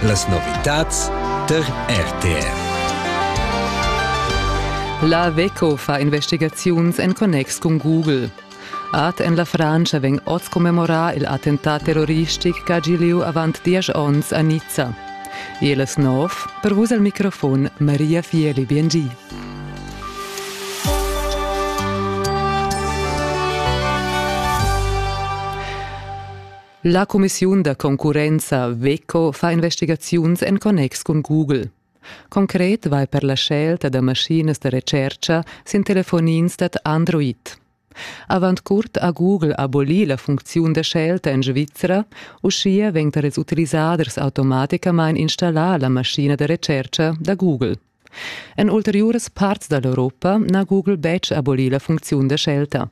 Las novitads tar RTR. La WECO fa investigaziuns en connex cun Google. Art en la Francia vegn oz commemorà il attentat terroristic ch'ha gì lieu avant diesch onns a Nizza. Elas nov, per vus al microfon Maria Fieli Biengi. La cumissiun da concurrenza Veco fa investigaziuns en connex cun Google. Concret vai per la scelta da maschinas da recerca sin telefonins dad Android. Avant curt ha Google abolì la funcziun da scelta en Svizra, uschia vegn tar ils utilisaders automaticamain installà la maschina da recerca da Google. En ulteriuras parts da l'Europa n'ha Google betg abolì la funcziun da scelta.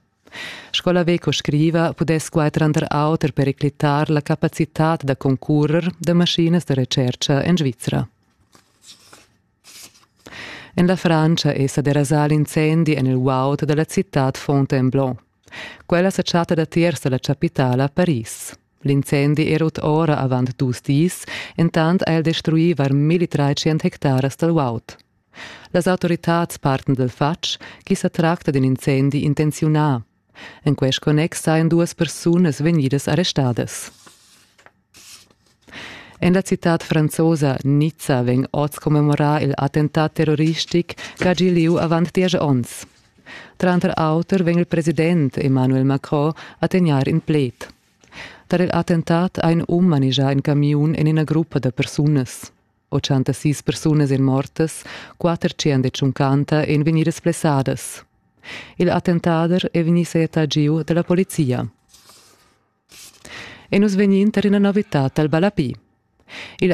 Sco la Veco scriva, pudess quai tranter auter periclitar la capacitad da concurrer da maschinas da retscherca en Svizra. En la Francia è sa derasà l'incendi en il guaud da la citad Fontainebleau. Quella sa chatta datiers da la chapitala Paris. L'incendi era ut ora avant dus dis, entant ha el destruì var 1300 hectaras dal guaud. Las autoritads parten dal fatg ch'i sa tracta d'in incendi intenziunà. En quest connex sajan duas persunas vegnidas arrestadas. En la citad franzosa Nizza vegn oz commemorà il attentat terroristic ch'ha gì lieu avant diesch onns. Tranter auter vegn il president Emmanuel Macron a tegnair in pled. Tar il attentat ha in um manegià in camiun en ina gruppa da persunas. 86 persunas èn mortas, 450 èn vegnidas blessadas. Il attentader è vegnì setà giu da la polizia. E nus vegnin tar ina novità dal Balapi. Il